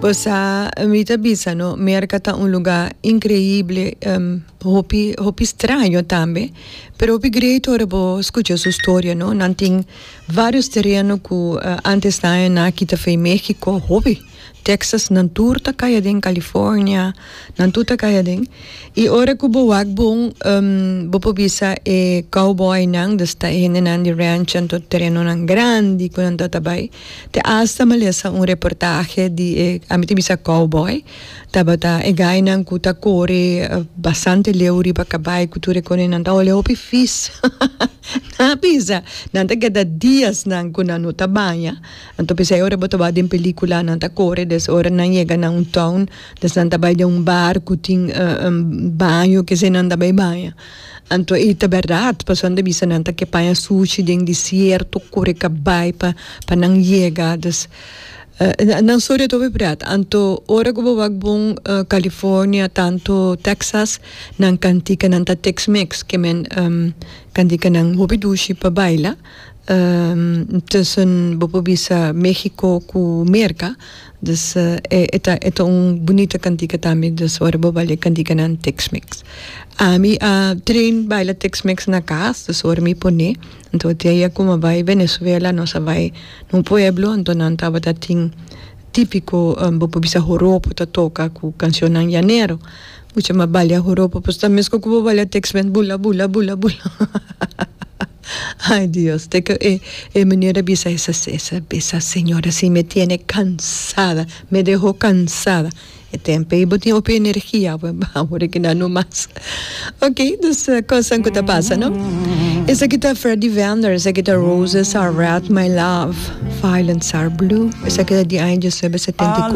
Bosa mi ta bisa no Merca ta un luga increíble hopi hopi straño tambe pero hopi great ora bo scucha su storia no nan tin varios tereno cu antes nan a na kita fe Mexico hopi Texas nan tur ta caya den California nan tur ta caya den y ora cu bo wak bon bo por bisa e cowboy nan desta e hende nan di ranch anto terenonan grandi cu nan ta ta bay Te asta mi a lesa un reportahe di e, ami ta bisa cowboy, tabata e gainan cu ta core bastante leu riba cabai cu tur e conenan, ta ola hopi vis. Nan a bisa, nan ta keda dias nan cu nan no ta baña, anto p'esei e ora bo ta wak den pelicula nan ta core, des ora nan yega na un town, des nan ta bay den un bar cu tin baño, kesey nan ta bay baña. Anto i ta berdad, pasobra e bisa nan ta ke paña suchi den disierto, kore kabai pa pa nan yega. Dus, nan storia ta obi berdad. Anto ora ku bo wak bon California, tantu Texas, nan kantika nan ta Tex-Mex, ke men kantika nan hopi dushi pa baila. tussen bo por bisa Mexico cu Merca dus e ta e ta un bunita cantica tambe dus ora bo baila e canticanan Tex Mex ami a train baila Tex Mex na cas dus ora mi pone anto diaye cu mi bai Venezuela nos a bai na un pueblo anto nan tabata tin tipico bo por bisa horopo ta toca cu cancionnan yanero pucha mi a baila horopo pues ta mesco cu bo baila Tex Mex bula bula bula bula. Ay Dios te ke e meñor a bisa esa Cesar bisa señor así me tiene cansada me deho cansada e tempe y bo tin hopi energia awe awe ora kina no mas ok dus cosnan ku ta pasa no esaki ta Freddy Vender esaki ta Roses are red my love violets are blue esaki ta di aña diecinuebe setenta y.